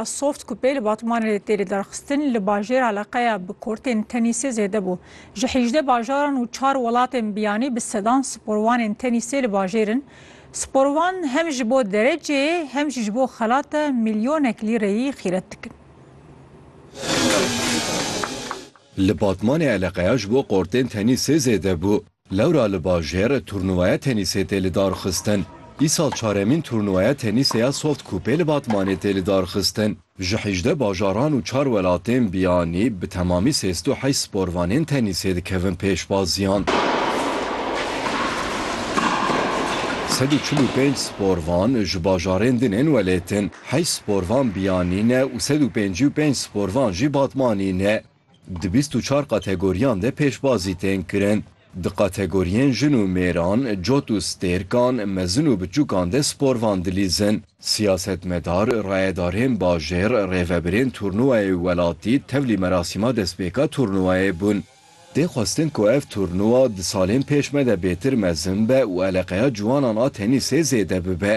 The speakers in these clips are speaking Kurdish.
Soft ku pê li Batmanê de tê lidarxistin, li bajêr eleqeya bi kortên tenîsê zêde bû. Ji hîjdeh bajaran û çar welatên biyanî bi sedan sporwanên tenîsê li bajêr in. Sporwan hem ji bo dereceyê hem jî ji bo xelate milyonek lîreyî xîret dikin. Li Batmanê eleqeya ji bo kortên tenîsê zêde bû. Lewra li bajêr turnûwaya tenîsê tê lidarxistin. Îsal çaremîn turnûwaya tenîsê ya Soft Coupê li Batmanê tê lidarxistin. Ji hîjdeh bajaran û çar welatên biyanî bi temamî sêst û heşt sporvanên tenîsê dikevin pêşbaziyan. Sed û çil û pênc sporvan ji bajarên din ên welêt in. Heşt sporvan biyanî ne û sed û pêncî û pênc sporvan jî Batmanî ne. Di bîst û çar kategoriyan de pêşbazî tên kirin. Di kategoriyên jin û mêran, cot û stêrkan, mezin û biçûkan de sporvan dilîzin. Siyasetmedar, rayedarên bajêr, rêvebirên turnûwayê welatî tevlî merasîma destpêka turnûwayê bûn. Tê xwestin ku ev turnûwa di salên pêş me de bêtir mezin be û eleqeya ciwanan a tenîsê zêde bibe.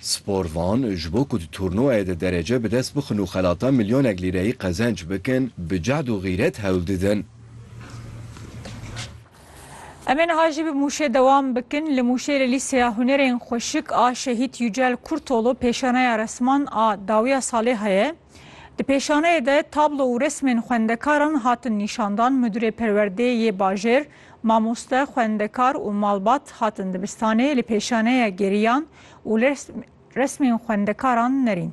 Spor Van ji bo ku di turnûwayê de derece bi dest bixin û xelata milyonek lîreyî qezenc bikin, bi cehd û xîret hewl didin. Em ê niha jî bi Mûşê dewam bikin. Li Mûşê li Lîseya Hunerên Xweşik a Şehîd Yücel Kurtoğlu pêşaneya resman a dawiya salê heye. Di pêşaneyê de tablo û resmên xwendekaran hatin nîşandan, Midûrê Perwerdê yê Bajêr, mamoste, xwendekar û malbat hatin dibistanê li pêşaneya geriyan û resmên xwendekaran nerîn.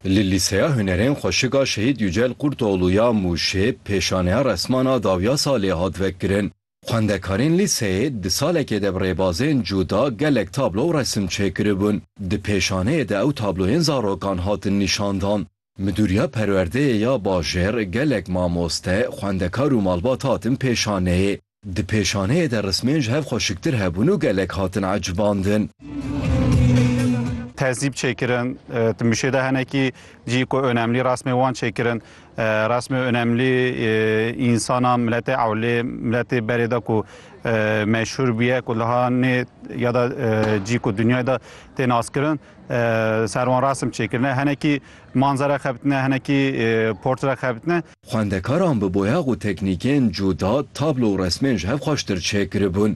Li Lîseya Hunerên Xweşika Şehîd Yücel Kurtoğlu ya Mûşê pêşaneya resman a dawiya salê hat vekirin. Xwendekarên lîseyê di salekê de bi rêbazên cuda gelek tablo û resim çêkiribûn. Di pêşaneyê de ew tabloyên zarokan hatin nîşandan. Midûriya perwerdeyê ya bajêr, gelek mamoste, xwendekar û malbat hatin pêşaneyê. Di pêşaneyê de rismên ji hev xweşiktir hebûn û gelek hatin ecibandin. Tehzîb çêkirin, di mûşê de hinekî cî ku önemlî resmên wan çêkirin. Rasmê önemlî însana miletê ewlê, miletê berê de ku meşhûr bûye ku liha nê ya da cî ku dinyayê de tê naskirin ser wan rasm çêkirine. Henekî manzere xebitine, henekî portre xebitine. Xwendekaran bi boyax û teknîkên cuda tablo û resmên ji hev xweştir çêkiribûn.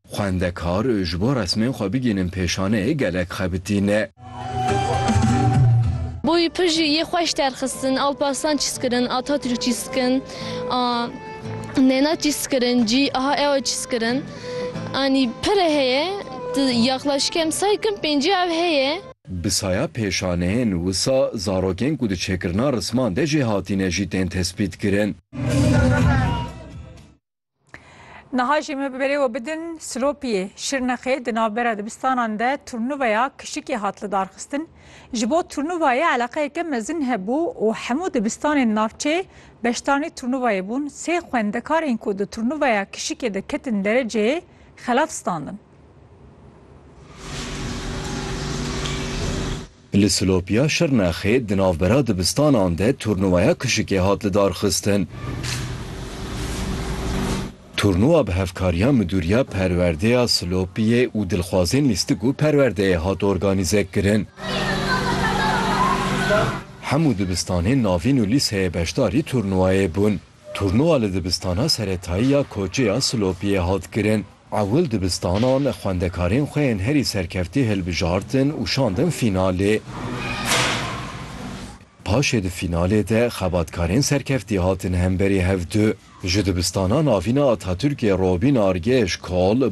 Xwendekar ji bo resmên xwe bigihînin pêşanê gelek xebitî ne. Boyî pir jî yê xweş derxistin. Alparslan çîskirin, Atatürk çîskirin a Nêna çîskirin cî aha ew çîskirin. Anî pir e heye. Ti yaxlaşî kem say kim pêncî ew heye. Bi saya pêşaneyên wisa zarokên ku di çêkirina risman de jê hatîne jî tên tespîtkirin. Niha jî me bi berê we bidin Silopiyê, Şirnexê di navbera dibistanan de turnuvaya kişikê hat lidarxistin. Ji bo turnuvayê eleqeyeke mezin hebû û hemû dibistanên navçeyê beşdarnê turnuvayê bûn. Sê xwendekarên ku di turnuvaya kişikê de ketin dereceyê xelaf standin. Li Silopiya Şirnexê di navbera dibistanan de turnuvaya kuşikê hat lidarxistin. Turnuva bi hevkariya Midûriya Perwerdeya Silopiyê û dilxwazên lîstik û perwerdeyê hat organîzekirin. Hemû dibistanên navîn û lîseyê beşdarî turnuvayê bûn. Turnuva li dibistana seretayî ya Koçê ya Silopiyê hat kirin. Ewil dibistanan xwendekarên xwe yên herî serkeftî hilbijartin û şandin fînalê. Paşê di fînalê de xebatkarên serkeftî hatin hemberî hev du. Ji dibistanan avîna Atatürkê Robîn Argeş Kol,